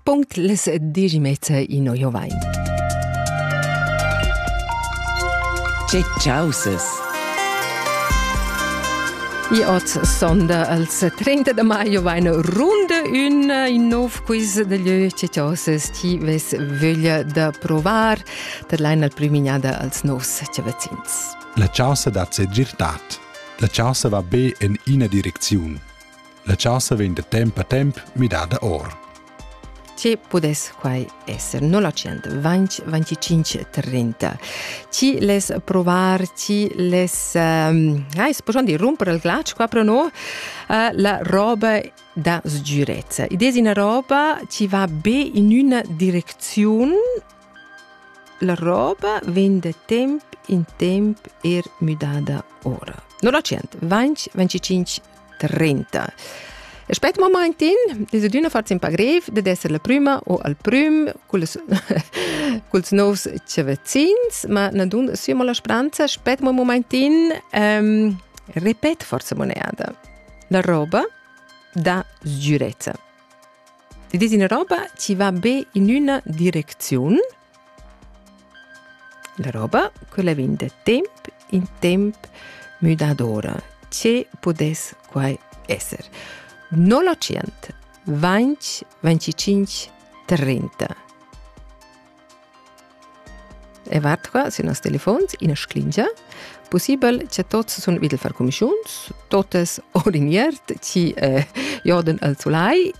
Punkt les digimezza ino Jovain. Che causes! I oz sonda als 30 de maio eine Runde in in nov quiz de lieu che causes ti ves vöglia da provar per lein al primignada als novs che vecins. La causa da segirtad. La causa va be in ina direcziun. La chasa vegn da temp a temp midada or. Ti pudess quai esser 0925 Ti les provar, ti les... Um, ai, spogion di rompere il glace qua però no? Uh, la roba da sgirezza. Idea una roba ti va be in una direzione la roba venne da temp in temp er müdada ora. 0925 30. Aspet momentin es adüna fat ün pa grev dad esser la prüma o al prüm culs culs novs chavazzins, ma na dun sümo la spranza. Aspet mo momentin, ehm, repet forza moneda. La roba dà sgürezza. Ti desi una roba ci va be in üna direcziun, La roba, quella vegn da temp in temp müdadora. Che pudess quai esser? No l'ocient. 20 25 30. E vart qua sün nos telefons ina sclingia. Possibel che tots sun vid far comischuns, totes or in iert, ci eh, joden al sulai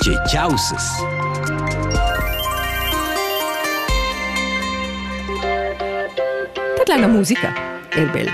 Tgei caussas? Tadlanga musica, el bel.